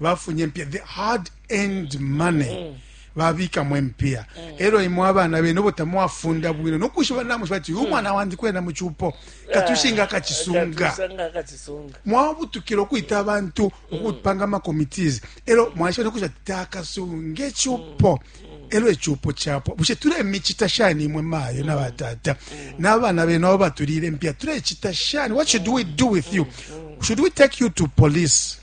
bafunye mpiya the hard end money mm. babikamo empiya mm. elo imwe abana bene obo tamwafunda bwino nokushiba namushiba ati uyu mm. mwana wandi kwena mucupo katushinga ah, akacisunga mwabutukila okwita abantu mm. okupanga amacomitis elo mwashiba nokushiba ati takasunga ecupo elo ecupo capwa bushe tulemicita shani imwe mayo na batata n'abana bene abo batulile empiya tulecita shani what should we do with you should we take you to police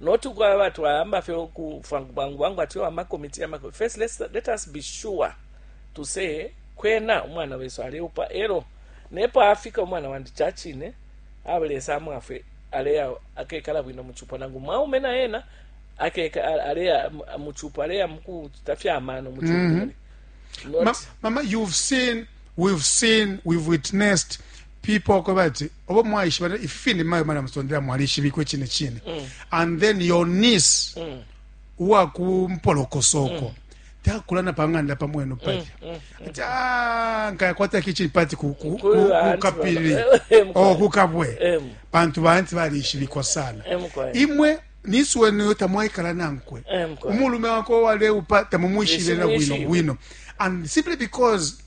Not ukwaba twayamba fye uku fwangu bwangu bwangu ati yo ama committee yama first let's, let us be sure to say kwena umwana wesu aleupa elo nepo afika umwana wandi chachine awe lesa amwafwe aleya akekala bwino muchupo nangu mwaume na yena akeka aleya muchupo aleya mukuchita fya amano muchupo mm -hmm. Not, Ma, mama you've seen we've seen we've witnessed people kwebati obo mwaishiba ne- ifi fine mayo mali amusondela mwalishibikwe cine cine and then your niece uwakumpolokosoko takulana pang'anda pamwenu palya ati "Ah, nkayakwata kitchen party ku- ku- Kuli ku- ba auntie kukapiri baba. Eh, mkwai. o kukabwe Em. pantu baanti balishibikwa sana Em, mkwai. imwe nisi wenu yo tamwaikala nankwe Em, mkwai. umulume wako waleupa tamumwishibe na bwino Simwishibe. bwino and simply because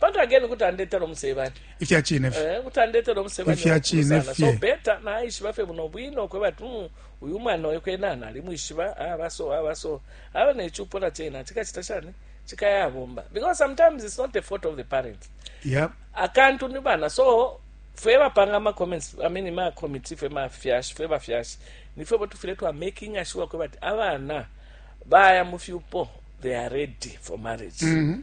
But again kuti andetela umusebanya. Ifya cine fye. Eh, kuti andetela umusebanya. Ifya cine fye. So better na ishiba fye buno bwino kweba tu hmm, uyu mwana oyo kwena nali mwishiba abaso ah, abaso. Ah, Aba ah, ne chupo na chena chikachita shani? Chikaya bomba. Because sometimes it's not the fault of the parents. Yeah. Akantu ni bana. So fwe bapanga ma comments, I mean ma committee fwe ma fyash, fwe ba fyash. Ni fwe botu fwe tu making sure kweba abana baya mu fyupo they are ready for marriage. Mm -hmm.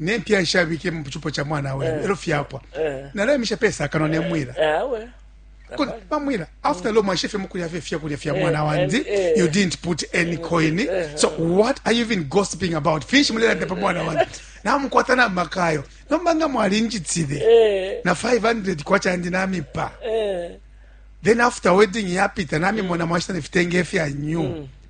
ne mpya nshabike mu cupo ca mwana we eh. elo fyapwa eh. nalemisha pesa kano ne mwila eh, bamwira after lo mwashefe mukulya fye fyakulya fya mwana wandi you didn't put any coin so what are you even gossiping about finshi mulelanda pa mwana wandi namukwata na makayo nomba nga mwalinjitile na 500 kwacha ndi namipa then after wedding yapita namimona mwashita nefitenge fya new mm.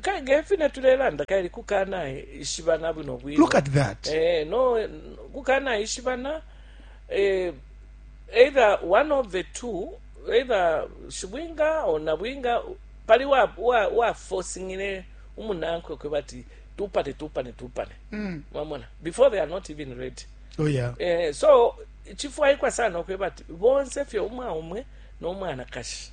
kale ngefi netulelanda kale kukana ishibana bwino bwino look at that eh no kukana ishibana eh either one of the two either shibwinga or nabwinga pali wa wa, wa forcingile umunankwe kwebati tupane tupane tupane mm. mamona before they are not even ready oh yeah eh so chifwaikwa sana kwebati bonse fye umwa umwe no mwana kashi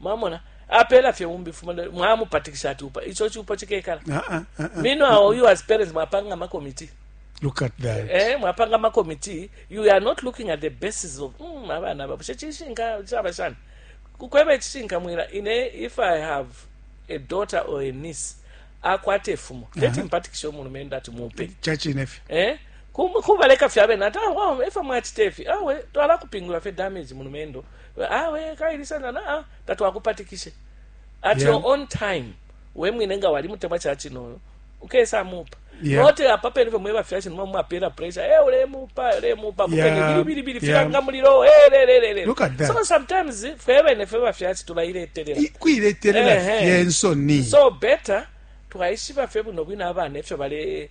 Mwamona? Apela fye umbi fuma mwamupatikisha ati upa. Icho chupo chikekala. Uh -uh, uh -uh. Meanwhile, uh -uh. you as parents mwapanga ma committee. Look at that. Eh, mwapanga ma committee, you are not looking at the basis of mm abana babo. Chichishinga chaba shana. Kukwebe chishinga mwira ine if I have a daughter or a niece akwate fumo. Uh -huh. Leti mpatikisha umulumenda ati mupe. Chachi nefi. Eh? Kubaleka fyabe nata, wow, efa mwachitefi. Awe, tuwala kupingula fe damage mulumendo. awe kaili sana na ah, tatwakupatikishe at Yeah. your own time we mwine nga wali mutemwa ca cinoyo ukesa mupa Yeah. note apa pene fye mweba fyashi nimwe mwapela pressure eh ulemupa ulemupa mupene Yeah. bilibili Yeah. filanga mulilo eh le le le le Look at that. so sometimes fwe bene fwe bafyashi tulailetelela I- kuiletelela Ehe. fye nsoni so better twayishiba fye buno bwino abana efyo bale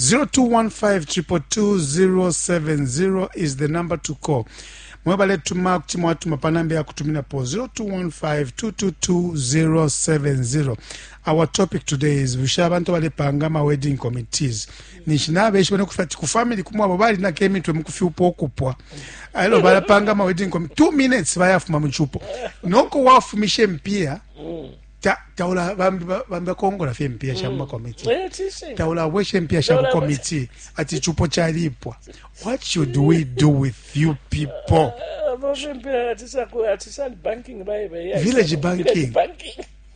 0215222070 is the number to call mwe baletuma kuti mwatuma pa namba ya kutuminapo 0215222070 our topic today is bushe abantu balepanga ama wedding committees ninshi nabeshiba nokufa ati ku family kumu abo balinako emitwe mukufyupa okupwa elo balapanga ama wedding committee two minutes bayafuma mu chupo noko wafumisha empiya taula bambi bambi akongola fye mpiya sha mm. muma committee eh, taula bweshe mpiya sha ku committee ati chupo chalipwa what should we do with you people village banking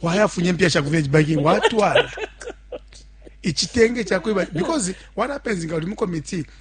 wayafunye mpiya sha ku village banking watwala ichitenge chakwe because what happens nga uli mu committee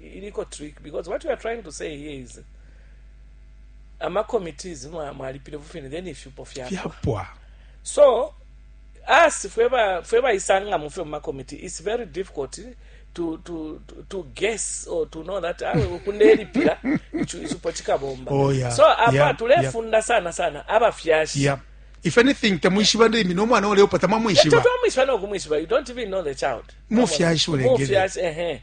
iliko trick because what you are trying to say here is ama committees mwa mwalipile vufine then ifyupo fyapwa fyapwa so us fwe ba fwe bayisanga mu fyo mu ma committee it's very difficult to to to- to guess or to know that awe kundelipila ichu- ichupo chikabomba Oh, yeah. so apa Yeah, tulefunda sana sana abafyashi yeah. if anything tamwishiba ndimi nomwana oleopa tamwamwishiba tatwamwishiba nokumwishiba you don't even know the child Mufyashi ulengele. Mufyashi, ehe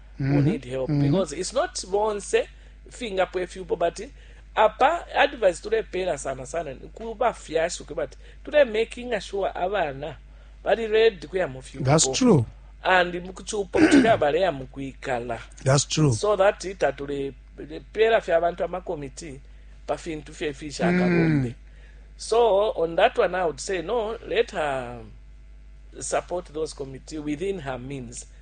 who need help mm -hmm. because it's not bonse fingapwa ifyupo but apa advice tulepeela sana sana ku bafyashi kwe bati tule making sure abana bali ready kuya mu fyupo that's true and mukuchupo kuti abaleya mukwikala that's true so that tatule pera fya abantu amakomiti pa fintu fye fishakabombe mm. so on that one i would say no let her support those committee within her means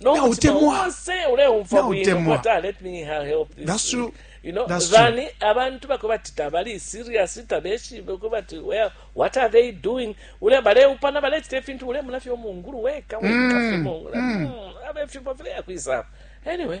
no mutima Nautemwa. wonse uleumfwa bwino Nautemwa. but, ah, let me ha- help this That's week. true. You know, That's bani abantu bako bati tabali serious tabeshibe ko bati well, what are they doing ule baleupana balechita ifintu ule munafyo mungulu weka weka fimongula Mm, abe fimbo file yakwisa anyway